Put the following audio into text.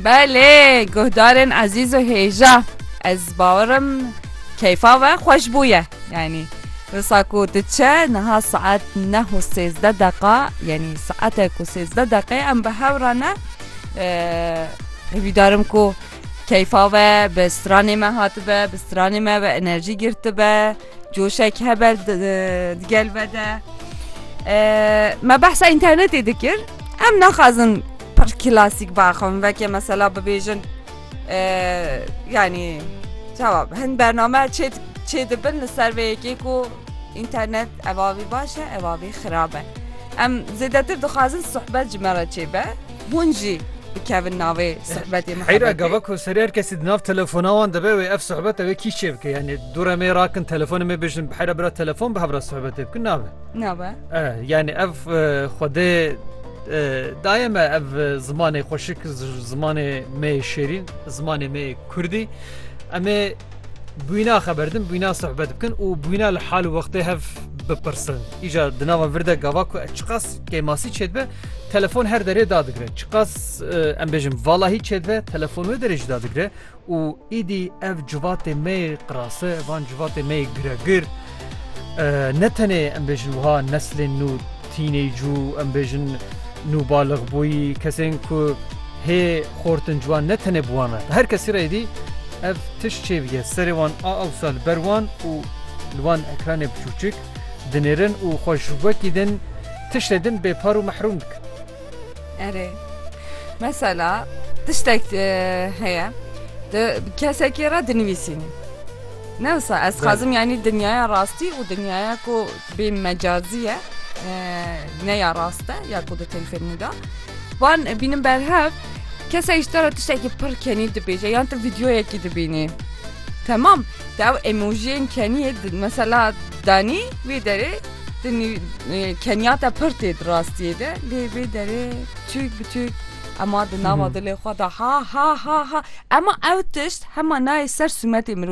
Belê guhdarên ezîz û hêja ez bawerim keyfa we xweş bûye yanî wisa ku diçe niha saet neh û sêzde deqa yanî saetek û sêzde deqê em bi hew re ne hêvîdarim ku keyfa we bi stranê me hatibe bi stranê me bi enerjî girtibe. Coşek hebe digel vede. Me behsa internetê dikir. Em naxwazin pir klasîk baxin veke mesela bibêjin yanî çawa hin bername çêt çê dibin li ser vê yekê ku internet evavî baş e evavî xirab e. Em zêdetir dixwazin sohbet ji me re çêbe. Hûn jî bikevin navê suhbetê muhebetê. Heyra gava ku serê her kesî di nav telefona wan de be wê ev suhbet ew ê kî çê bike yanî dûre mê rakin telefonê mê bijin heyra bira telefon bi hev re suhbetê bikin nabe. Nabe. Eh yanî ev xwedê dayê me ev zimanê xweşik zimanê me yê şêrîn zimanê me yê kurdî em ê bûyna xeberdin, bûyna sohbet bikin û bûyna li hal û wextê hev bipirsin. Îja di nava vir de gava ku çiqas kêmasî çêdibe telefon her derê dadigire. Çiqas em bêjim valahî çêdibe telefon wê derê jî dadigire û îdî ev civatê me yê qirase van civatê me yê giregir ne tenê em bêjin wiha neslên nû Tînêcû, em bêjin nûbaligbûyî, kesên ku hê xortin ji wan ne tenê bi wan re. Bi her kesî re êdî ev tişt çêbige serê wan a ewsa li ber wan û li wan ekranê biçûçik dinêrin û xwe ji wekî din tiştê din bêpar û mehrûm dikin. Erê, mesela tiştek heye tu bi kesekî re dinivîsînî ne wisa ez dixwazim yanî dinyaya rastî û dinyaya ku Bê mecazî ye ne ya rast e ya ku di telfîlmê de wan bînin berhev kesek ji te re tiştekî pir kenî dibêje yan tu vîdyoyekî dibînî temam te ew emojiyên keniyê mesela danî wê derê keniya te pir tê di rastiyê de lê vê derê çûk bi çûk ema di nava dilê xwe de ha ha ha ha ema ew tişt hema nayê ser sûmetê mirojî.